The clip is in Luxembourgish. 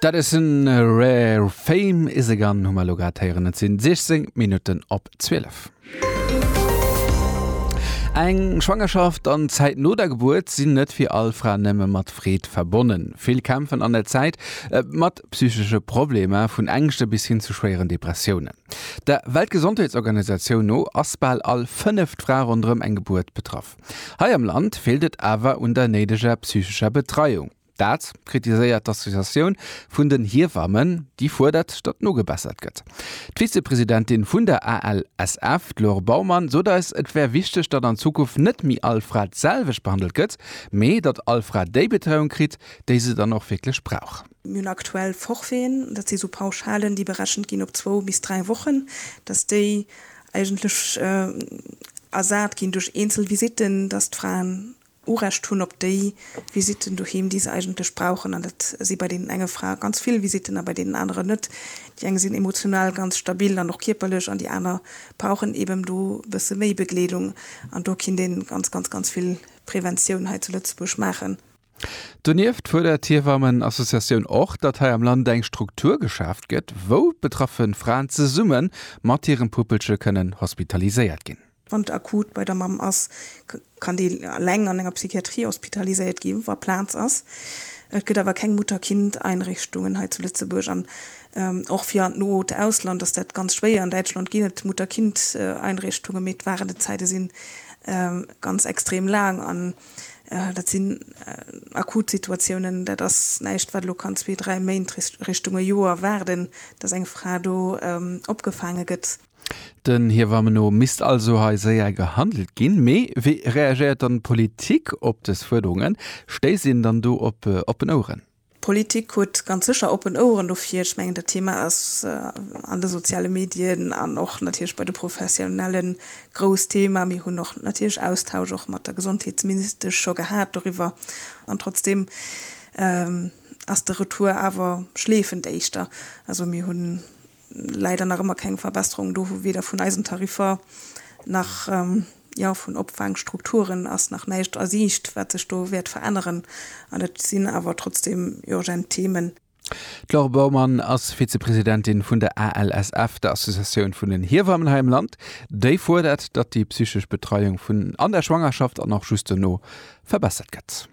Dat ass en Rare Fame is a Gun hu mer lo grad héieren. Et sinn 16 Minutten op 12. Eng Schwangerschaft an d'Zäit no der Gebuert sinn net fir all Fra nëmme mat Freed verbonnen. Vill kämpfen an der Zäit mat psychesche Problemer, vun Ängschte bis hin zu schwéieren Depressiounen. Der Weltgesondheetsorganisatioun no ass bal all fënneft Fra ronderëm eng Gebuert betraff. Hei am Land feelt et awer un der néideger psychescher Betreiung. Dat kritiséiert d'Associatioun vun den Hiewammen, déi fuerdert, datt nogebessert gëtt. D'Vizepresidentin vun der ALSF, d'Laure Baumann, sot eis, et wär wichteg, datt an Zukunft net méi all Fra d'selwecht behandelt gëtt, mee datt all Fra déi Betreiung kritt, déi se dann och wierklech brauch. Mir hunn aktuell Forfaiten, dat si sou Pauschalen, déi berechent ginn op zwou bis dräi Wochen, datt déi eigentlech ersat ginn duerch eenzel Visitten, datt d'Fraen Urecht hunn op déi Visitten doheem, déi se eigentlech brauchen. An dat si bei deenen enge Frae ganz vill Visitten a bei deenen aneren net. Déi eng sinn emotional ganz stabil an och kierperlech an déi aner brauchen eben do e bësse méi Begleedung. An do kinnt ee ganz, ganz, ganz vill Preventioun hei zu Lëtzebuerg maachen. Donieft fuerdert d'Hiewamme-Associatioun och, datt hei am Land eng Struktur geschaaft gëtt, wou betraffe Fraen zesumme mat hirem Puppelche kënnen hospitaliséiert ginn. Wann et akut bei der Mamm ass, kann déi eleng an enger Psychiatrie hospitaliséiert ginn, wa Plaz ass. Et gëtt awer keng Mutter-Kind-Einrichtungen hei zu Lëtzebuerg an och fir an d'not Ausland ass dat ganz schwéier. An Däitschland ginn et Mutter-Kind-Einrichtungen, mee d'Waardezäite si ganz extrem laang. Dat sinn akut Situatiounen. Dat ass näischt, wat elo kann zwee, dräi Méint, Richtung e Joer waarden, dass eng Fra do opgefaange gëtt. Den Här Wammenot misst also hei séier gehandelt ginn. Mee wéi reagéiert dann d'Politik op dës Fuerderungen? Stéisst een dann do op oppen Oueren? D'Politik huet ganz sécher oppen Oueren dofir. Ech mengen dat Thema ass an de soziale Medien an och natierlech bei de Professionellen grouss Thema. Mir hunn och natierlech Austausch och mat der Gesondheetsministesch scho gehat doriwwer. An trotzdeem ass de Retour awer schleefend éischter. Also mir hunn leider nach ëmmer keng Verbesserung do, weder vun eisen Tariffer nach, jo, vun Opfaangstrukturen ass nach näischt a Siicht, wat sech do wäert veränneren. An et sinn awer trotzdeem urgent Themen. D'Laure Baumann ass Vizepresidentin vun der ALSF, der Associatioun vun den Hiewammen hei am Land. Déi fuerdert, datt déi psychesch Betreiung vun an der Schwangerschaft an och just dono verbessert gëtt.